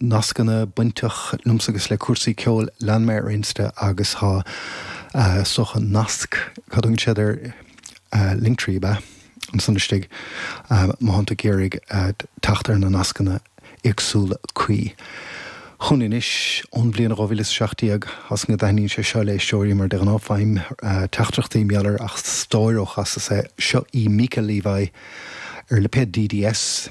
nascanna bainteach liomsa agus le cúrsaí ceoil. Lean mé ar Insta agus tá sóch an nasc, cad a thugann siad air, linktree ab ea? ansan istigh. Má tháim tú ag iarraidh teacht ar na nascanna éagsúla cuí. Chugainn anois, ón bhliain 2017, as an go dtaithníonn sé seo le éisteoirí mar de ghnáth faighim teachtaireachtaí miolar ach stáir ó chasas é. Seo í Mica Levi ar lipéad DDS.